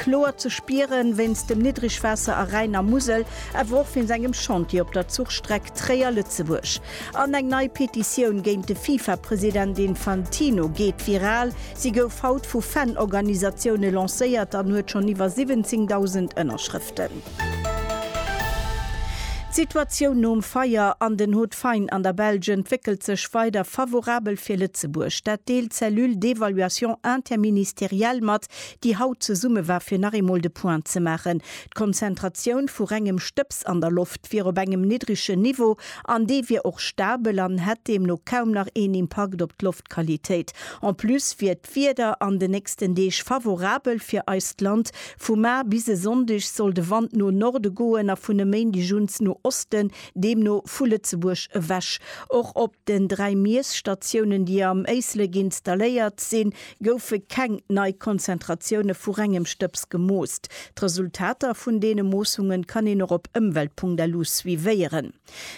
Kloer ze spieren wéinst dem Niddrigwaasser a Rhäin a Musel, awer och wéinst engem Chantier op der Zuchstreck Tréier-Lëtzebuerg. An eng nei Petitioun géint de Fifa-President Infantino geet viral. Si gouf haut vu Fan-Organisatioune lancéiert an huet schonn iwwer 17.000 Ënnerschrëften. D'Situatioun nom Feier an den Hauts-de-Faine an der Belsch entwéckelt sech weider favorabel fir Lëtzebuerg. Dat deelt d'Cellule d'évaluation interministérielle mat, déi haut zesumme war fir nach eemol de Point ze maachen, d'Konzentratioun vu rengem Stëbs an der Loft wier op engem niddregen Niveau an dee wier och stabel an hätt deemno kaum nach een Impakt op d'Loftqualitéit. En plus wier d'Wieder an den nächsten Deeg favorabel fir eist Land, vu mar bis e Sonndeg soll de Wand no Norde goen a vun e Méindeg uns no Osten, deemno vu Lëtzebuerg ewech. Och op den dräi Miesstatiounen, déi am Éislek installéiert sinn, goufe keng nei Konzentratioune vu rengem Stëbs gemoost. D'Resultater vun deene Moossungen kann een och op ëmwelt.lu suivéieren.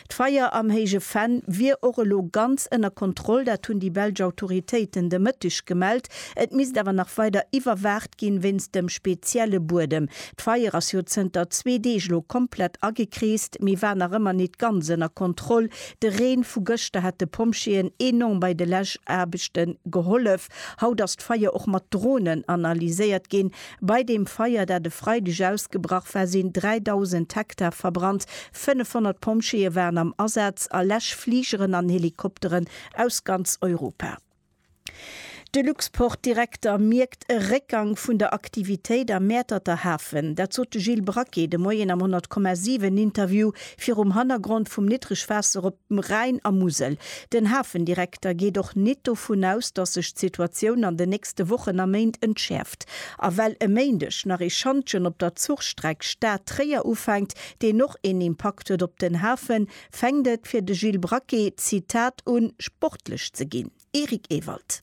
D'Feier am Héije Venn wier och elo ganz ënner Kontroll, dat hunn déi belsch Autoritéiten de Mëtteg gemellt. Et misst awer nach weider iwwerwaacht ginn, wéinst dem spezielle Buedem. D'Feier ass jo zënter zwee Deeg elo komplett agekreest, mee war nach ëmmer nit ganz ënner Kontroll, De Reen vu gëschter hat de Pompjeeën enorm bei de Läschaarbechte gehollef. Haut ass d'Feier och mat Dronen analyséiert ginn. Bei deem Feier, dat e Freideg ausgebrach war, sinn 3.000 Hektar verbrannt. 500 Pompjeeë waren am Asaz a Läschfligeren an Helikopteren aus ganz Europa. De Luxport-Direkter mierkt e Réckgang vun der Aktivitéit am Mäerterter Hafen. Dat sot de Gilles Braquet de Moien am 10,7 Interview virum Hannergrond vum Niddregwaasser op dem Rhäin a Musel. Den Hafendirekter geet och nit dovun aus, datt sech d'Situatioun an den nächste Wochen a Méint entschäerft. A well e Méindeg nach ee Schantjen op der Zuchstreck Stad-Tréier ufänkt, deen och een Impakt huet op den Hafen, Fänkt et fir de Gilles Braquet, Zitat, un, sportlech ze ginn? Eric Ewald.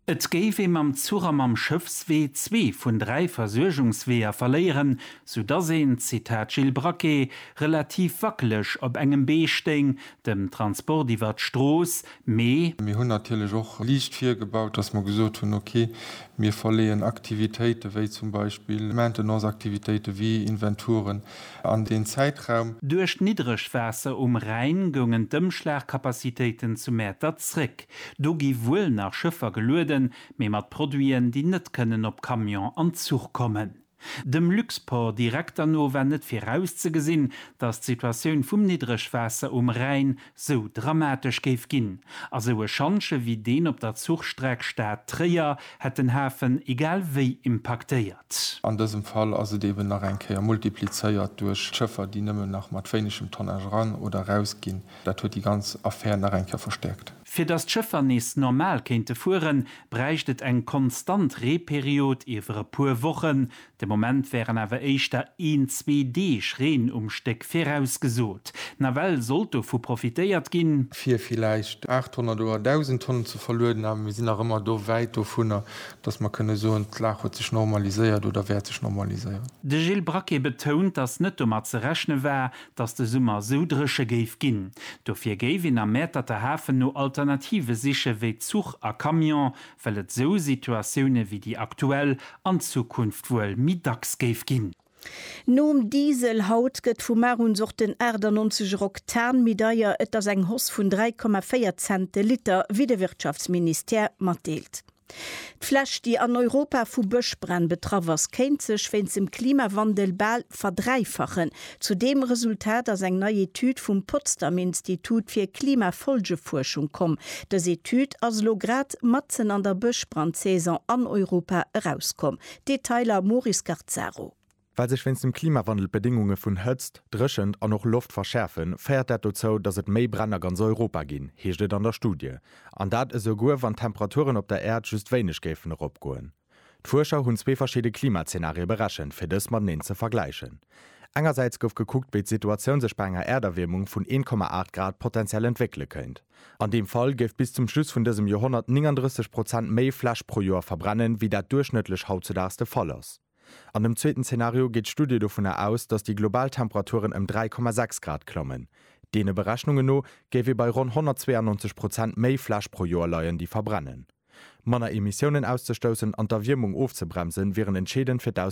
Et géif ee mam Zuch a mam Schëffswee zwee vun dräi Versuergungsweeër verléieren, soudass een, Zitat Gilles Braquet, relativ wackeleg op engem Bee stéing, dem Transport iwwer d'Strooss, mee. Mir hunn natierlech och liicht virgebaut, dass mer gesot hunn, ok, mir verleeën Aktivitéite wéi zum Beispill Maintenance-Aktivitéite wéi Inventuren, an deen Zäitraum. Duerch d'Niddregwaasser um Rhäin goungen d'Ëmschlagcapacitéiten zu Mäertert zréck. Do gi wuel nach Schëffer gelueden, mee mat Produiten, déi net kënnen op Camion an Zuch kommen. Dem Luxport-Direkter no war net virauszegesinn, datt d'Situatioun vum Niddregwaasser um Rhäin sou dramatesch géif ginn, a sou e Schantje wéi deen op der Zuchstreck Stad, Tréier hätt den Hafen egal wéi impaktéiert. An dësem Fall ass et eben nach eng Kéier multiplizéiert duerch d'Schëffer, déi nëmmen nach mat wéinegem Tonnage eran oder eraus ginn. Dat huet déi ganz Affär nach eng Kéier verstäerkt. Fir datt d'Schëffer nees normal kéinte fueren, bräicht et eng konstant Reeperiod iwwer e puer Wochen, De Moment wären awer éischter een, zwee Deeg Reen um Stéck virausgesot. Nawell sollt dovu profitéiert ginn. Fir villäicht 800 oder 1.000 Tonnen ze verlueden, awer mir sinn nach ëmmer do wäit dovunner, dass mer kënne soen, d'Lag huet sech normaliséiert oder wäert sech normaliséieren. De Gilles Braquet betount, dass net domat ze rechne war, dass de Summer esou dréche géif ginn. Dofir géif een am Mäerterter Hafen no Alternative siche wéi Zuch a Camion, well et esou Situatioune wéi déi aktuell an Zukunft wuel méi dacks géif ginn. Nom Diesel haut gëtt vu mar un och den 98 er Oktan méi deier, et ass eng Hausse vun 3,4 Cent de Liter, wéi de Wirtschaftsministère matdeelt. D'Fläch, déi an Europa vu Bëschbränn betraff ass, kéint sech wéinst dem Klimawandel bal verdräifachen, Zu deem Resultat ass eng nei Etüd vum Potsdam Institut fir Klimafolgefuerschung komm. Dës Etüd ass elo grad matzen an der Bëschbrandsaison an Europa erauskomm. Detailer, Moris Garzaro. Well sech wéinst dem Klimawandel d'Bedéngunge vun Hëtzt, Dréchent an och Loft verschäerfen, féiert dat dozou, datt et méi Bränn a ganz Europa ginn, heescht et an der Studie. An dat esouguer, wann d'Temperaturen op der Äerd just wéineg géifen eropgoen. D'Fuerscher hunn zwee verschidde Klimazenarie berechent, fir dës mateneen ze vergläichen. Engersäits gouf gekuckt, wéi d'Situatioun sech bei enger Äerderwiermung vun 1,8 Grad potenziell entwéckele kéint. An deem Fall géif bis zum Schluss vun dësem Joerhonnert 39 Prozent méi Fläch pro Joer verbrennen, wéi dat duerchschnëttlech hautzedaags de Fall ass. An dem zweeten Zenario geet d'Studie dovunner aus, datt déi global Temperaturen ëm 3,6 Grad klammen. Deene Berechnunge no géif ee bei ronn 192 Prozent méi Fläch pro Joer leien, déi verbrennen. Manner Emissiounen auszestoussen an d'Erwiermung ofzebremsen, wieren entscheedend fir d'Auswierkungen